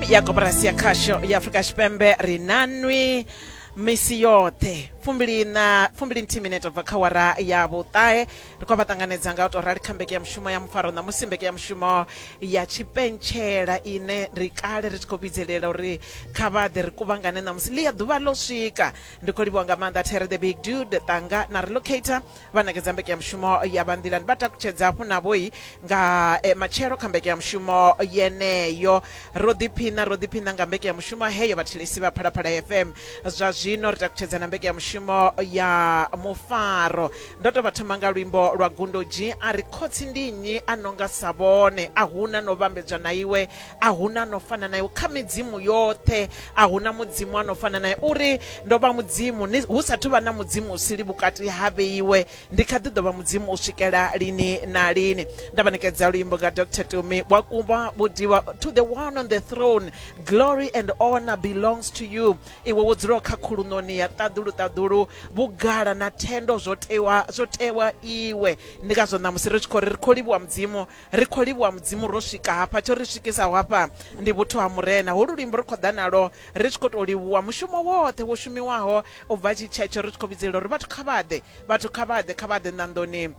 ya koporasi ya khasho ya afurika tshipembe ri na nwi misi yoṱhe fumbili na fumbili nthihi minete bva kha wara ya vhuṱahe ri khou vha ṱanganedza nga u tou rali kha mbeke ya mushumo ya mufaro ṋamusi mbeke ya mushumo ya tshipentshela ine ri kale ri tshi khou vhidzelela uri kha vha ḓe ri kuvhangane ṋamusi ḽi ya ḓuvha ḽo swika ndi khou livhiwa nga maanḓa there the big dude ṱanga na relocator vha nekedza mbekanyamushumo ya vha nḓilani vha takutshedza hafhu navhoi nga eh, matshelo kha mbekanyamushumo yeneyo ro ḓiphina ro ḓiphina nga mbekanyamushumo heyo vhathelesi vha phalaphala fm zwa zwino ri takutshedza na mbekanyamushumo ya mufaro ndo to vha thoma nga luimbo lwa gundodzhi a ri khotsi ndi nnyi a nonga sa vhone a huna no vhambedzwa na iwe a huna no fana naye kha midzimu yoṱhe a huna mudzimu a no fana naye uri ndo vha mudzimu hu sathu vha na mudzimu usili vhukati ha vheiwe ndi kha ḓi ḓo vha mudzimu u swikela lini na lini nda vhanekedza luimbo nga dr tumi wa kuba vhudiwa to the one on the throne glory and honor belongs to you iwe wo dzulaho kha khulunoni ya ṱaḓulu ṱaḓulu vhugala na thendo zwo tewa zwo tewa iwe ndi ngazwo ṋamusi ri tshi khou ri ri khou livhuwa mudzimu Ri khou livhuwa Mudzimu ro swika hafha. Tsho ri swikisaho hafha ndi vhuthu ha Murena. Holu luimbo ri khou ḓa nalwo ri tshi khou tou livhuwa mushumo woṱhe wo shumiwaho u bva tshi tshetsho ri tshi khou vhidzelela uri vhathu kha vha ḓe, vhathu kha vha ḓe, kha vha ḓe nḓandoni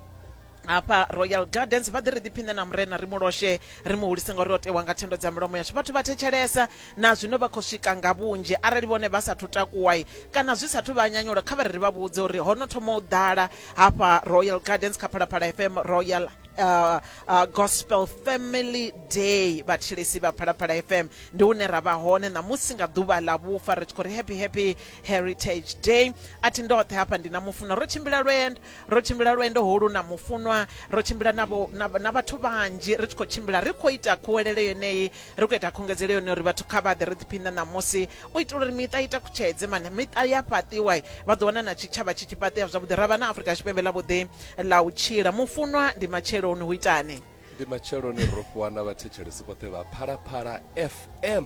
hafha Royal Gardens vha ḓe ri ḓiphiṋe na Murena ri mu loshe, ri mu hulise ngauri o tewa nga thendo dza milomo yashu. Vhathu vha thetshelesa na zwino vha khou swika nga vhunzhi. Arali vhone vha sathu takuwa kana zwi sathu vha nyanyula kha vha ri ri vha vhudze uri ho no thoma u ḓala hafha Royal Gardens kha Phalaphala FM Royal. Uh, uh, gospel family day vhatshilisi vha phalaphala fm ndi hune ra vha hone ṋamusi nga ḓuvha ḽa vhufa ri tshi khou ri happy happy heritage day a thi ndoṱhe hafha ndi na mufunwa ro tshimbila lwendo ro tshimbila lwendo holu na mufunwa ro tshimbila na vhathu vhanzhi ri tshi khou tshimbila ri khou ita khuwelele yeneyi Ri khou ita khungedzelo yone uri vhathu kha vha ḓe ri ḓiphiṋe ṋamusi u itela uri miṱa i takutshedze mane miṱa ya fhaṱiwa vha ḓo wana na tshitshavha tshi tshi fhaṱea zwavhuḓi ra vha na Afrika Tshipembe ḽa vhuḓi ḽa u tshila mufunwa ndi matsheloni hu itani ndi matsheloni ro fhiwa na vhathetshelesi vhoṱhe vha Phalaphala FM